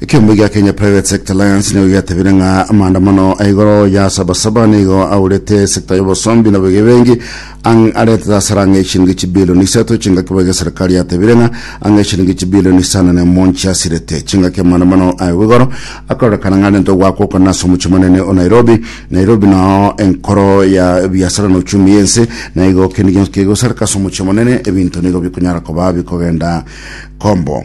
Ekeombe gia Kenya Private Sector Alliance nigo giatebire ng'a amaandamano a igoro ya Sabasaba nigo aurete sector y'obosombi na bogebengi ang' arete hasara ang'e chiringi chibilioni isato chingaki boiga serikali yatebire ng'a ang'e chiringi chibilioni isano na emo nchiasirete chingaki amaandamano aye bw'igoro akarorekana ng'a arente ogwakwa okona ase omochie monene o Nairobi Nairobi nao enkoro ya ebiasara na uchumi y'ense na igo kende gionsi kegosareka ase omochie monene ebinto nigo bikonyara koba bikogenda kombo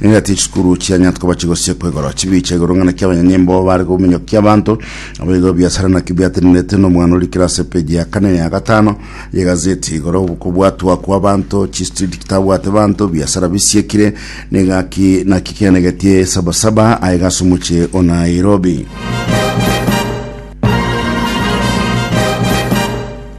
Nigo ati chisukuru chianyarete koba chigosie kwegora chibicha igoro ng'ana kia abanyanyimbo bare kominyokia abanto abo igoro biasara naki biatenenerete n'omwana ori kirase epeji ya kane ya gatano y'egazeti igoro kobwatwa kwa abanto chistreet kitabwate banto biasara bisiekire nigaki naki kianegetie sabasaba aye gase omochie o Nairobi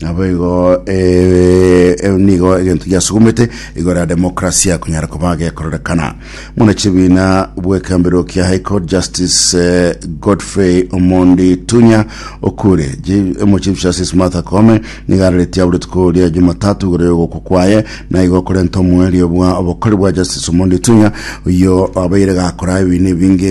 Naboigo eh, nigo egento giasugumete igoro ya demokrasia kunyara koba gekororekana. Muna chibina bwekambiro kia High Court Justice eh, Godfrey Omondi Tunya okure mu Chief Justice Martha Koome nigo araretie aburetuko ria Jumatatu igoro yogokwa kwaye na igo korenta omwerio bwa obokori bwa Justice Omondi Tunya oyo abaire gakora ebinto ebinge